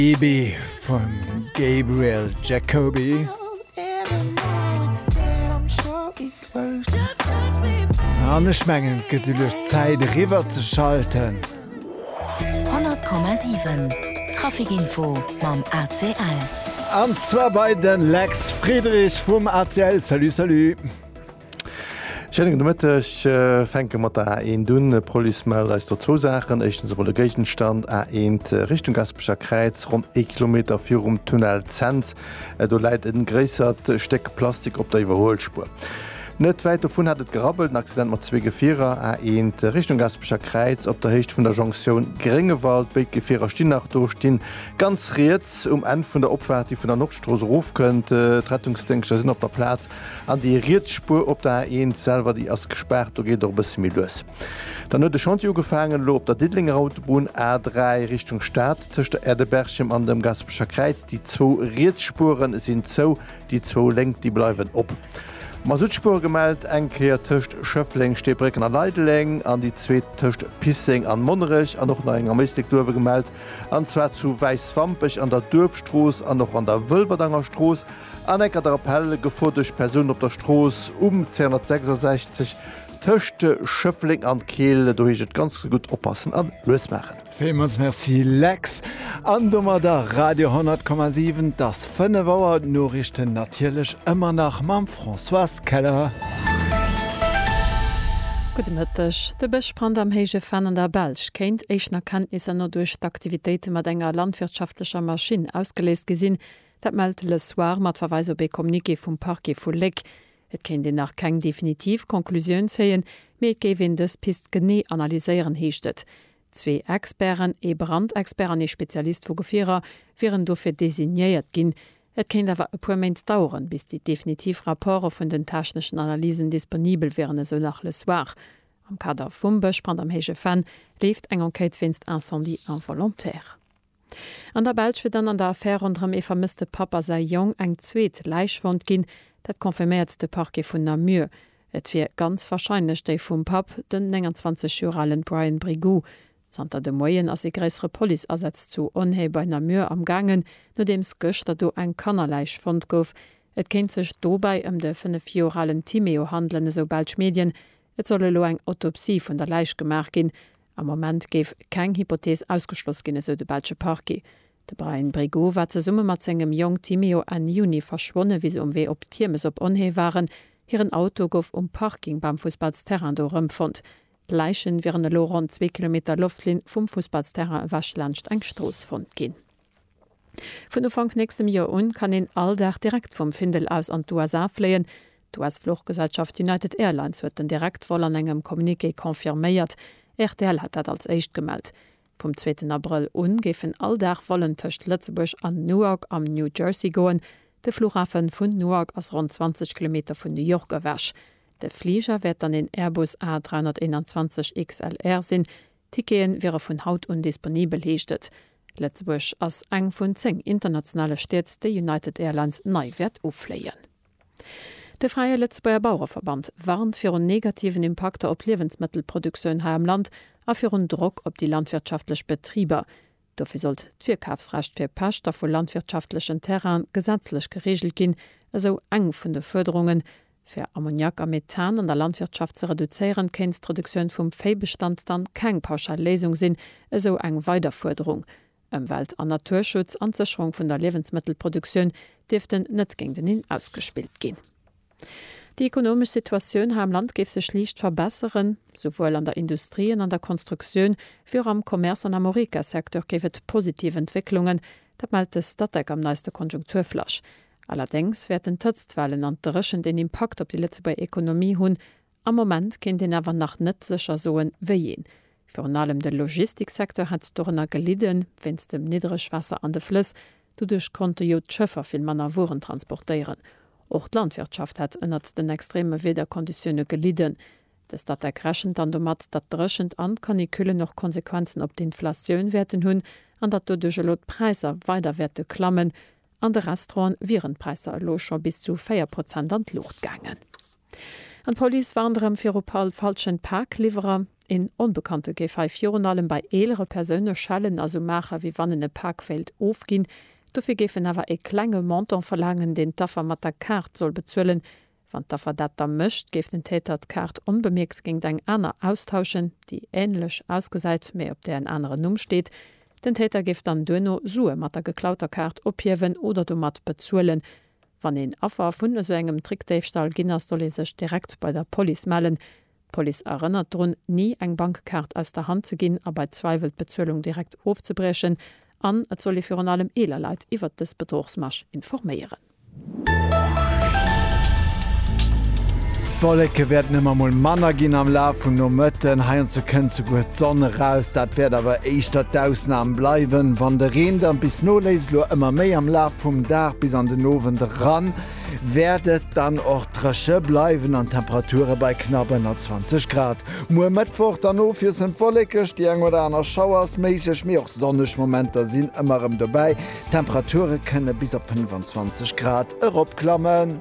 EB vum Gabriel Jacoby. An ech mengen et gëtt lues Zäit eriwwer ze schalten. 100,7 Traficinfo mam ACL. An zwar bei de Lex Friedrich vum ACL. Salut salut. Schéinen gudde Mëtteg. Fänke mat der A1 un. D'Police mellt eis do zwou Saachen. Éischtens emol e Géigenstand, A1 Richtung Gaspecher Kräiz, ronn ee Kilometer virum Tunnel Cents. Do läit e gréissert Stéck Plastik op der Iwwerhuelspuer. Net wäit dovun hat et gerabbelt, en Accident mat zwee Gefierer, A1 Richtung Gaspecher Kräiz op der Héicht vun der Jonktioun Gréngewald. Béid Gefierer stinn nach do, stinn ganz riets um Enn vun der Opfaart, déi vun der Nordstrooss erofkënnt. D'Rettungsdéngschter sinn op der Plaz An déi riets Spuer op der A1 selwer, déi ass gespaart, do geet och e bësse méi lues. Dann huet e Chantier ugefaangen elo op der Diddelenger Autobunn, A3 Richtung Stad, tëscht der Aire de Berchem an dem Gaspecher Kräiz. Déi zwou riets Spuere sinn zou, déi zwou lénk, déi bleiwen op. Masuttspuere gemellt, eng Kéier tëscht Schëffleng, Steebrécken a Leideleng an déi zweet tëscht Pisseng an Monnerech. An och nach eng am Éislek Duerwe gemellt, an zwar zu Wäiswampech an der Duerfstrooss an och an der Wëlwerdanger Strooss. An enker der Appel, Gefor duerch Persounen op der Strooss um 266 tëscht Schëffleng an Keel. Do heescht et ganz gutt oppassen a lues maachen. Villmools Merci Lex, an domadder Radio 10,7. Et ass 5 Auer, d'Noriichten natierlech ëmmer nach mam Françoise Keller. Gudde Mëtteg. De Bëschbrand am Héije Venn an der Belsch kéint éischten Erkenntnisser no duerch d'Aktivitéite mat enger landwirtschaftlecher Maschinn ausgeléist gi sinn, Dat mellt Le Soir mat Verweis op ee Communiqué vum Parquet vu Léck. Et kéint een nach keng definitiv Conclusioun zéien, mee et géif een dës Pist genee analyséieren, heescht et. Zwee Experten, ee Brandexpert an ee Spezialist vu Gefierer, wieren dofir designéiert ginn. Et kéint awer e puer Méint daueren, bis déi definitiv Rapporte vun den techneschen Analysen disponibel wieren, esou nach Le Soir. Am Kader vum Bëschbrand am Héije Venn leeft eng Enquête wéinst Incendie involontaire. An der Belsch wier dann an der Affär ronderëm ee vermësste Papp a säi Jong eng zweet Läich fonnt ginn. Dat confirméiert de Parquet vun Namur. Et wier ganz warscheinlech déi vum Papp, den 29 Joer ale Brian Brigou. Zanter de Moien ass ee gréissere Police-Asaz zu Onhaye bei Namur am gaangen, nodeems gëschter do eng Kannerläich fonnt gouf. Et kéint sech dobäi ëm de 5 Joer alen Timéo handelen, esou belsch Medien. Et soll elo eng Autopsie vun der Läich gemaach ginn. Am Moment géif keng Hypothees ausgeschloss ginn, esou de belsche Parquet. De Bryan Brigoux war zesumme mat sengem Jong Timéo Enn Juni verschwonne wéi se um Wee op d'Kiermes op Onhée waren. Hiren Auto gouf um Parking beim Fussballsterrain do erëmfonnt. D'Läiche wieren elo ronn zwee Kilometer Loftlinn vum Fussballsterrain ewech laanscht eng Strooss fonnt ginn. Vun Ufank nächstem Joer un kann een all Dag direkt vum Findel aus an d'USA fléien. D'US-Fluchgesellschaft United Airlines huet den Direktvol an engem Communiqué confirméiert. Rtl hat dat als éischt gemellt. Vum zweeten Abrëll u géifen all Dag Vollen tëscht Lëtzebuerg an Newark am New Jersey goen. De Flughafe vun Newark ass ronn 20 Kilometer vun New York ewech. De Fliger wäert dann een Airbus A321 XLR sinn, Tickete wiere vun haut un disponibel, heescht et. Lëtzebuerg ass eng vun 10 internationale Stied, déi United Airlines nei wäert ufléien. De Fräie Lëtzebuerger Bauereverband warnt virun negativen Impakter op d'Liewensmëttelproduktioun hei am Land a virun Drock op déi landwirtschaftlech Betriber, Dofir sollt d'Virkafsrecht fir Pächter vu landwirtschaftlechen Terraine gesetzlech gereegelt ginn, esou eng vun de Fuerderungen. Fir Ammoniak a Methan an der Landwirtschaft ze reduzéieren, kéint d'Reduktioun vum Véibestand dann keng pauschal Léisung sinn, esou eng weider Fuerderung. Ëmwelt an Naturschutz an d'Sécherung vun der Liewensmëttelproduktioun dierften net géinteneen ausgespillt ginn. Déi ekonomesch Situatioun hei am Land géif sech liicht verbesseren. Souwuel an der Industrie an an der Konstruktioun wéi och am Commerce an am Horeca-Secteur géif et positiv Entwécklungen. Dat mellt de Statec am neiste Konjunkturflash. Allerdéngs wäerten d'Hëtztwellen an d'Dréchent een Impakt op déi Lëtzebuerger Ekonomie hunn. Am Moment kéint een awer nach net sécher soen, wéi een. Virun allem de Logistiksecteur hätt dorënner gelidden, wéinst dem Niddregwaasser an de Flëss. Doduerch konnte jo d'Schëffer vill manner Wueren transportéieren. Och d'Landwirtschaft hätt ënnert den extreme Wiederkonditioune gelidden. De Statec rechent dann domat, datt d'Dréchent an d'Canicullen och Konsequenzen op d'Inflatioun wäerten hunn an datt doduerch elo d'Präisser weider wäerte klammen. An de Restauranten wieren d'Präisser elo scho bis zu 4 Prozent an d'Luucht gaangen. An d'Police warnt erëm viru falschen Pakliwwerer. Een Onbekannte géif hei virun allem bei eelere Persoune schellen a sou maachen, wéi wann en e Pak wéilt ofginn. Dofir géif en awer e klenge Montant verlaangen, deen d'Affer mat der Kaart soll bezuelen. Wann d'Affer dat da mécht, géif den Täter d'Kaart onbemierkt géingt eng aner austauschen, déi änlech ausgesäit, mee op där en aneren Numm steet. Den Täter géif dann duerno Sue mat der geklauter Kaart ophiewen oder domat bezuelen. Wann een Affer vun esou engem Trickdéifstall ginn ass, soll ee sech direkt bei der Police mellen. D'Police erënnert drun, ni eng Bankkaart aus der Hand ze ginn a bei Zweiwel d'Bezuelung direkt ofzebriechen. An et soll ee virun allem eeler Leit iwwert dës Bedrochsmasch informéieren. D'Wolleke wäerten ëmmer mol manner ginn am Laf vum Nomëtten. Heiansdo kënnt souguer d'Sonn eraus. Dat wäert awer éischter d'Ausnam bleiwen. Wann de Reen da bis no Léiseloir ëmmer méi am Laf vum Dag bis an den Owend eran, wäert et dann och dréche bleiwen an d'Temperature bei knapp ënner 20 Grad. Muer Mëttwoch dann ofwiesselnd wollekeg, déi eng oder aner Schauer ass méiglech, mee och sonneg Momenter sinn ëmmer erëm dobäi. D'Temperature kënne bis op 25 Grad eropklammen.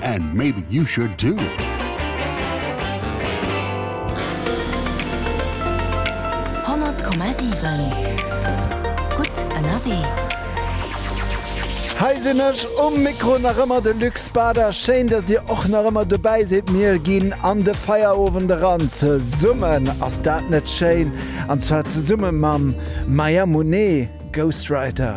And maybe you should too! Hei sinn ech um Mikro, nach ëmmer de Luc Spada. Schéin, dass dir och nach ëmmer dobäi sidd. Mir ginn an de Feierowend eran. Zesummen, ass dat net schéin? An zwar zesumme mam Maya Monet, Ghostwriter.